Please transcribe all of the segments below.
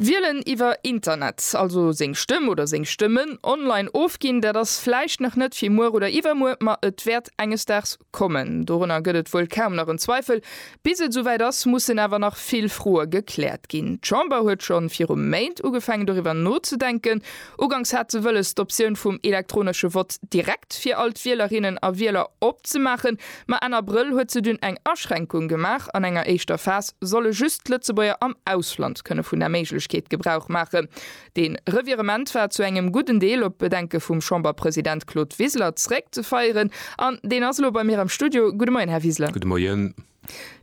Wielen iwwer Internet, also seng Stëmm oder seng Stëmmen online ofginn, dat ass vläicht nach net fir muer oder iwwermuer, ma et wäert enges Daags kommen. Dorunner gëtt et wuel kaum nach en Zweifel. Bis et esouwäit ass, mussen awer nach vill Froe gekläert ginn. D'Chamber huet scho viru Méint ugefaangen doriwwer nozedenken, Uganks hat se wëlles d'Optioun vum elektronesche Vott direkt fir all d'Wielerinnen a Wieler opzemaachen, ma Enn Abrëll huet se dunn eng Aschränkung gemaach, an enger éischter Phas solle just d'Lëtzebuerger am Ausland kënne vun der Méiglechkeet Gebrauch maachen. Dee Revirement war zu engem gudden Deel op d'Bedenke vum Chamberpresident Claude Wiseler zeréckzefeieren, an deen ass elo bei mir am Studio. Gudde Moien, Här Wiseler. Gudde Moien.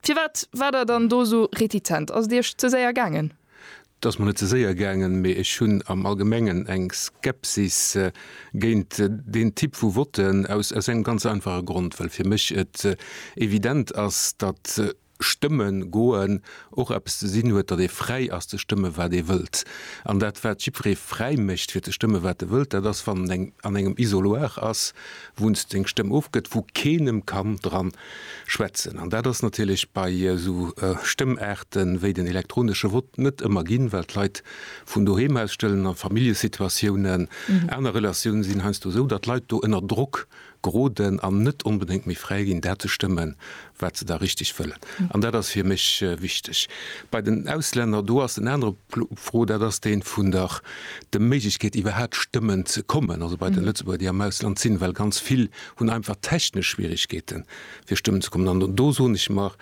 Firwat waart Der dann do esou retitent? Ass et Iech ze séier gaangen? Et ass mer net ze séier gaangen, mee ech hunn am Allgemengen eng Skepsis géint deen Typ vu Votte aus engem ganz einfache Grond, well fir mech et evident ass, datt stëmme goen och eppes ze sinn huet, datt ee fräi ass ze stëmme wat ee wëllt. An dat wat jiddweree fräi mécht fir ze stëmme wat e wëllt, dat ass wann en an engem Isoloir ass, wou en seng Stëmm ofgëtt, wou keen em kann dran Schwätzen. An dat ass natierlech bei esou Stëmmaarte wéi den elektronesche Vott net ëmmer ginn, well d'Leit vun doheem aus stëllen, a Familljesituatiounen, aner Relatioune sinn heiansdo esou, datt d'Leit do ënner Drock geroden an net onbedéngt méi fräi ginn, dat ze stëmme wat se da richteg wëllen. An dat ass fir mech wichteg. Bei den Auslänner, do ass en anere Pro, dat ass dee vun der de Méiglechkeet iwwerhaapt stëmmen ze kommen, also bei de Lëtzebuerger déi am Ausland sinn, well ganz vill hunn einfach technesch Schwierigkeeten, fir stëmmen ze kommen. An do soen ech mer,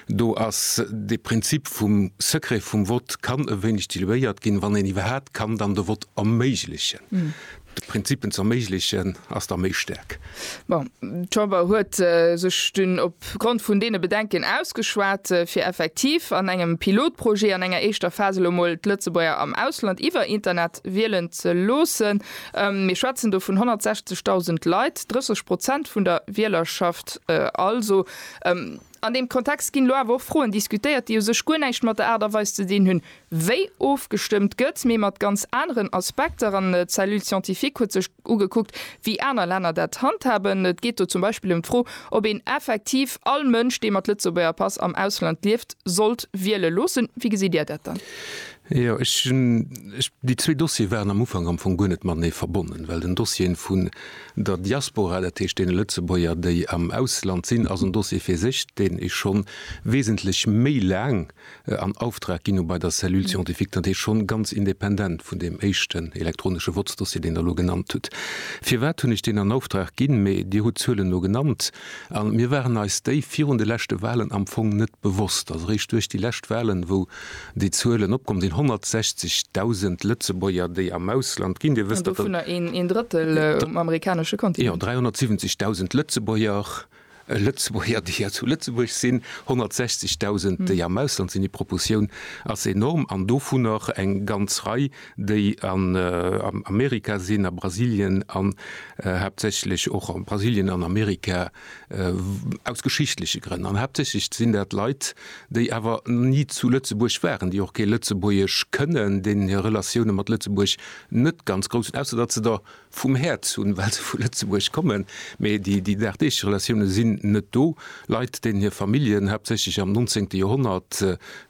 do ass dee Prinzip vum Secret vum Vott, kann e wéineg diluéiert ginn, wann een iwwerhaapt kann dann de Vott erméiglechen. De Prinzip, en ze erméiglechen, ass da méi staark. Bon, d'Chamber huet sech dunn opgrond vun deene Bedenken ausgeschwat, fir effektiv an engem Pilotprojet an enger éischter Phas elo emol d'Lëtzebuerger am Ausland iwwer Internet wielen ze loossen. Mir schwätzen do vun 160.000 Leit, 30 Prozent vun der Wielerschaft also. An deem Kontext ginn elo awer och Froen diskutéiert, déi u sech guer näischt mat der Aart a Weis ze dinn hunn, wéi ofgestëmmt gëtt, mee mat ganz aneren Aspekter. An d'Cellule scientifique huet sech ugekuckt, wéi aner Länner dat handhaben. Et geet do zum Beispill ëm d'Fro, ob een effektiv all Mënsch, dee mat Lëtzebuerger Pass am Ausland lieft, sollt wiele loossen. Wéi gesitt Dir dat dann? Jo, ech hunn, ech, déi zwee Dossiere waren am Ufank am Fong guer net matenee verbonnen, well den Dossier vun der Diaspora, dat heescht deene Lëtzebuerger, déi am Ausland sinn, ass en Dossier fir sech, deen ee scho wesentlech méi laang an Auftrag ginn hu bei der Cellule scientifique, dat heescht scho ganz independant vun deem éischten elektronesche Votsdossier, deen Der elo genannt hutt. Firwat hunn ech deen an Auftrag ginn? Mee Dir hutt d'Zuelen elo genannt, a mir waren eis déi virun de leschte Wahlen am Fong net bewosst. Ass eréischt duerch déi lescht Wahlen, wou Déi Zuelen opkomm sinn 160.000 Lëtzebuerger, déi am Ausland ginn. Dir wësst, datt. Dovunner een Drëttel um amerikanesche Kontinent. Jo, 370.000 Lëtzebuerger, Lëtzebuerger, déi hei zu Lëtzebuerg sinn, 160.000, déi am Ausland sinn. Déi Proportioun ass enorm. An dovunner eng ganz Rei, déi an Amerika sinn, a Brasilien an haaptsächlech och a Brasilien an Amerika. Aus geschichtleche Grënn. An haaptsächlech sinn dat Leit, déi awer ni zu Lëtzebuerg waren, déi och kee Lëtzebuergesch kënnen, deenen hir Relatioune mat Lëtzebuerg net ganz grouss sinn, ausser datt se der vum häert hunn, well se vu Lëtzebuerg kommen, mee déi dagdeeg Relatioune sinn net do. Leit, deenen hir Familljen, haaptsächlech am nonzéngte Joerhonnert,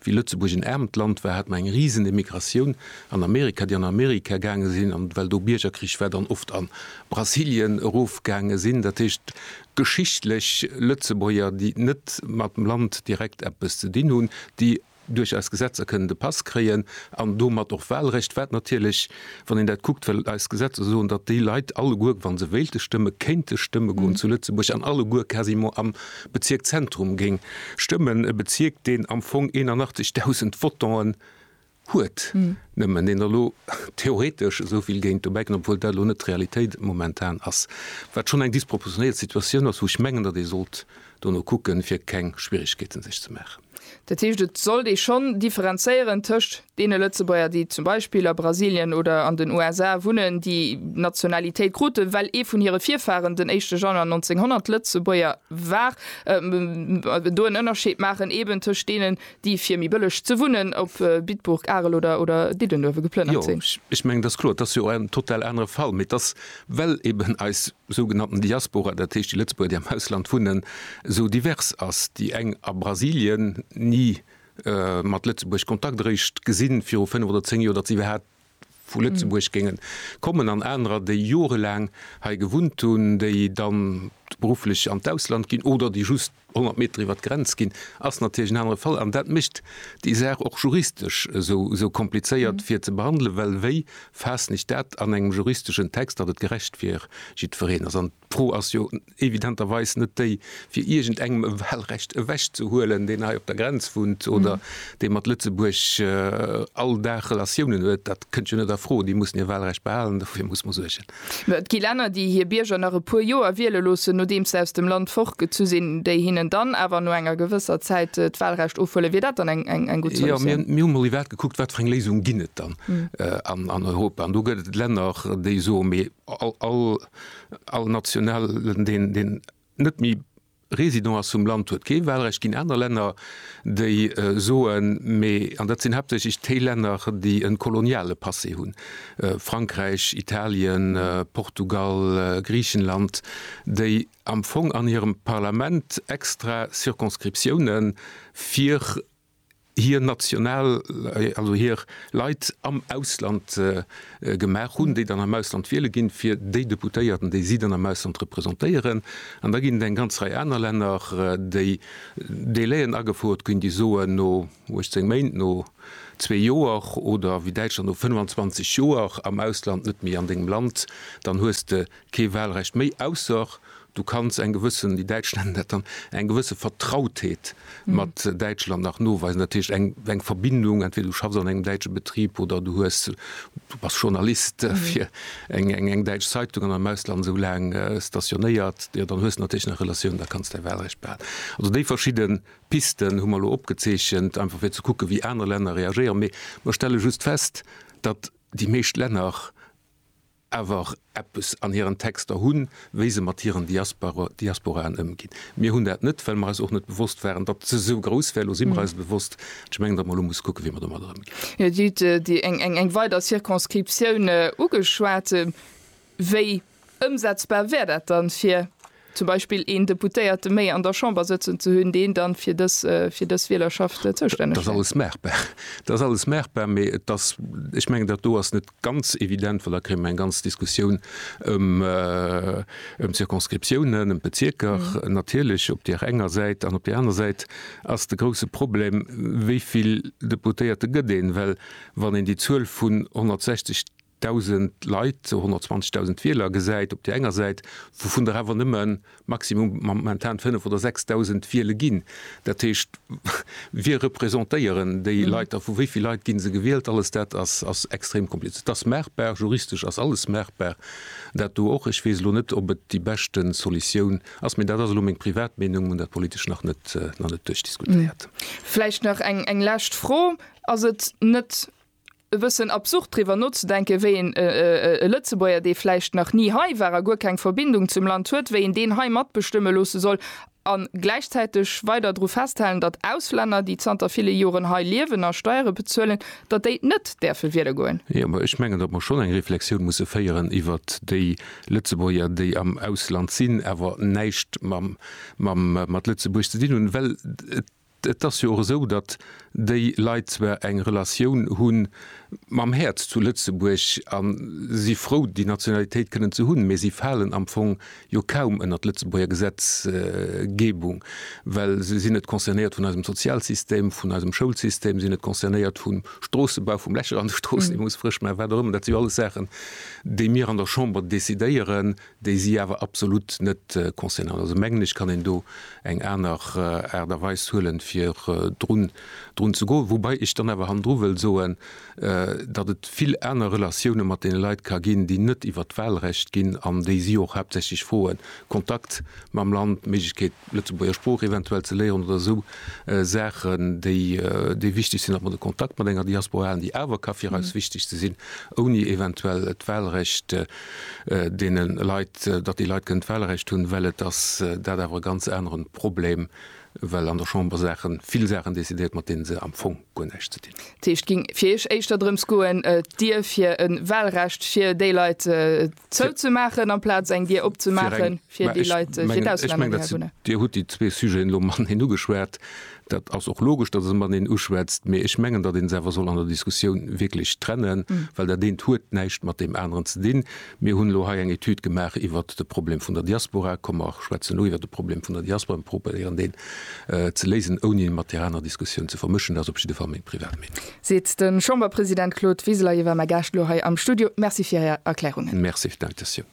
wéi Lëtzebuerg en aarmt Land war, hat mer eng Risenemigratioun an Amerika, déi an Amerika gaange sinn, an well do Biergerkrich war, dann oft an Brasilien erofgaange sinn, dat heescht geschichtlech Lëtzebuerger, déi net mat dem Land direkt eppes ze dinn hunn, déi duerch eis Gesetzer kënnen de Pass kréien an domat och Wahlrecht, wat natierlech, wann een dat kuckt, well eis Gesetzer soen, datt déi Leit alleguer, wa se wéilte stëmmen, kéinte stëmme goen zu Lëtzebuerg an alleguer quasiment am Bezierk Zentrum géing stëmmen, e Bezierk, deen am Fong 81.000 Votanten huet, nëmmen een elo theoretesch esou vill géint dobäi kënn, obwuel dat elo net d'Realitéit momentan ass, wat schonn eng disproportionéiert Situatioun ass, wou ech mengen, datt ee sollt dono kucken, fir keng Schwierigkeeten sech ze maachen. Dat heescht, et sollt ee schonn differenzéieren tëscht deene Lëtzebuerger, déi zum Beispill a Brasilien oder an den USA wunnen, déi d'Nationalitéit krute well ee vun hire Virfaren den éischte Januar 1900 Lëtzebuerger war, do en Ënnerscheed maachen eeben tëscht deenen, déi fir méi bëlleg ze wunnen op Bitburg, Arel oder Diddenuewe geplënnert sinn. Jo, ech mengen, dat ass kloer, dat ass jo en total anere Fall. Mee et ass, well eben eis sougenannten Diaspora, dat heescht déi Lëtzebuerger, déi am Ausland wunnen, esou divers ass, déi eng a Brasilien ni mat Lëtzebuerg Kontakt eréischt gesinn, viru fënnef oder zéng Joer, datt se iwwerhaapt vu Lëtzebuerg géingen kommen an anerer, déi jorelaang hei gewunnt hunn, déi dann berufflech an d'Ausland ginn oder déi just 100 Meter iwwert d'Grenz ginn, ass natierlech en anere Fall. An dat mécht déi Saach och juristesch esou komplizéiert fir ze behandelen, well wéi faassen ech dat an engem juristeschen Text, datt et gerecht fir jiddwereen ass? D'Fro ass jo evidenterweis net déi, fir iergendengem e Wahlrecht ewechzehuelen, deen hei op der Grenz wunnt oder dee mat Lëtzebuerg all Dag Relatiounen huet. Dat kënnt jo net a Fro. Déi mussen hir Wahlrecht behalen. Dofir muss mer suergen. Et gi Länner, déi hir Bierger nach e puer Joer wiele loossen, nodeems se aus dem Land fortgezu sinn, déi hinnen dann awer no enger gewësser Zäit d'Wahlrecht ofhuelen. Wier dat dann eng gutt Solutioun? Jo, mir hu mol iwwert gekuckt, wat fir eng Léisung ginn et dann an Europa. An do gëtt et Länner, déi soen, mee All Nationalen, deen net méi Résident ass vum Land, huet kee Wahlrecht géint aner Länner, déi soen, mee, an dat sinn haaptsächlech déi Länner, déi e koloniale Passé hunn, Frankräich, Italien, Portugal, Griichenland, déi am Fong an hirem Parlament extra Circonscriptiounen fir hir national, also hir Leit am Ausland gemaach hunn, déi dann am Ausland wiele ginn, fir déi Deputéierten, déi si dann am Ausland representéieren. An da ginn et eng ganz Rei aner Länner, déi Délaiën agefouert ginn, déi soen no 18 Méint, no zwee Joer oder wéi Däitschland no 25 Joer am Ausland, net méi an dengem Land, dann hues de kee Wahlrecht méi, ausser du kanns eng gewëssen, déi Däitsch nennen dat dann, eng gewësse Vertrautheet mat Däitschland nach noweisen, dat heescht eng eng Verbindung, entweder du schaffs an engem däitsche Betrib oder du hues, du bass Journalist fir eng eng eng däitsch Zeitung an am Ausland esou laang stationéiert, jo dann hues de natierlech nach Relatioun, da kanns däi Wahlrecht behalen. Also déi verschidde Pisten hu mer elo opgezeechent, einfach fir ze kucken, wéi aner Länner reagéieren, mee mer stelle just fest, datt déi meescht Länner awer eppes an hiren Texter hunn, wéi se mat hiren Diasporaen ëmginn. Mir hunn dat net, well mer eis och net bewosst waren, datt se esou grouss wär. Elo si mer eis e bewosst. An ech mengen, datt mer elo musse kucken, wéi mer domadder ëmginn. Jo, Dir hutt eng weider Circonscriptioun ugeschwat. Wéi ëmsetzbar wär dat dann fir zum Beispill een Deputéierte méi an der Chamber sëtzen ze hunn, deen dann fir dës, fir dës Wielerschaft zoustänneg wär. Dat ass alles maachbar. Dat ass alles maachbar, mee et ass, ech mengen, dat do ass net ganz evident, well da kréie mer eng ganz Diskussioun ëm, ëm d'Circonscriptiounen, ëm d'Bezierker natierlech op deer enger Säit. An op deer aner Säit ass de grouse Problem, wéi vill Deputéierte gëtt een? Well wann een déi Zuel vun 160, Dausend Leit, sou 120.000 Wieler gesäit op där enger Säit, wouvun der awer nëmme maximum momentan 5 oder 6.000 wiele ginn. Dat heescht, wie representéieren déi Leit da, vu wéi vill Leit gi se gewielt? Alles dat ass extrem komplizéiert. Et ass maachbar, juristesch ass alles maachbar, dat do och. Ech weess elo net, ob et déi beschte Solutioun ass, mee dat ass elo meng privat Meenung. Mir hunn dat politesch nach net duerchdiskutéiert. Vläicht nach eng lescht Fro, Ass et net e bëssen absurd driwwer nozedenken, wéi een e Lëtzebuerger, dee vläicht nach ni hei war a guer keng Verbindung zum Land huet, wéi een deen hei matbestëmme loosse soll a gläichzäiteg weider dru festhalen, datt Auslänner, déi zanter ville Joren hei liewen a Steiere bezuelen, datt déi net däerfe wiele goen. Jo, mä ech mengen, datt mer schonn eng Reflexioun musse féieren iwwert déi Lëtzebuerger, déi am Ausland sinn, awer näischt mat Lëtzebuerg ze dinn hunn, well et Et ass jo och esou, datt déi Leit zwar eng Relatioun hu mam Häerz zu Lëtzebuerg a si frou déi Nationalitéit kënnen ze hunn, mee si falen am Fong jo kaum ënnert d'Lëtzebuerger Gesetzgebung, well se sinn net concernéiert vun eisem Sozialsystem, vun eisem Schoulsystem, se sinn net concernéiert vum Stroossebau, vum Lächer an de Stroossen, dee muss frësch maachen, wat och ëmmer. Dat si jo alles Saachen, déi mir an der Chamber decidéieren, déi si awer absolut net concernant. Also mengen ech kann een do eng aner Aart a Weis huelen, fir drun ze goen. Woubai ech dann awer hannendru wëll soen, datt et vill aner Relatioune mat deene Leit ka ginn, déi net iwwert d'Wahlrecht ginn an déi si och haaptsächlech froen, Kontakt mam Land, d'Méiglechkeet, d'Lëtzebuerger Sprooch eventuell ze léieren oder esou Saachen, déi wichteg sinn, datt mer de Kontakt mat enger Diaspora halen, déi awer ka fir eis wichteg ze sinn, ouni eventuell d'Wahlrecht. deene Leit, datt déi Leit kënnen d'Wahlrecht hunn, well et ass dat awer e ganz anere Problem, well an der Chamber Saache vill Saachen decidéiert, mat deene se am Fong guer näischt ze dinn hunn. Dat heescht, et géing fir Iech éischter drëms goen, d'Dier fir e Wahlrecht fir déi Leit zouzemaachen, amplaz eng Dier opzemaache fir déi Leit, déi fir d'Auslänner hierwunnen? Dir hutt déi zwee Sujeten elo mateneen ugeschwat. Dat ass och logesch, datt een mateneen uschwätzt, mee ech mengen, datt ee se awer soll an der Diskussioun wierklech trennen, well dat eent huet näischt mat deem aneren ze dinn. Mir hunn elo hei eng Etüd gemaach iwwer de Problem vun der Diaspora. Komm mer schwätzen elo iwwer de Problem vun der Diaspora a probéieren deen ze léisen, ouni e mat där aner Diskussioun ze vermëschen. Dat ass op jidde Fall meng privat Meenung. Seet de Chamberpresident Claude Wiseler. Hie war mäi Gaascht elo hei am Studio. Merci fir Är Erklärungen. Merci fir d'Invitatioun.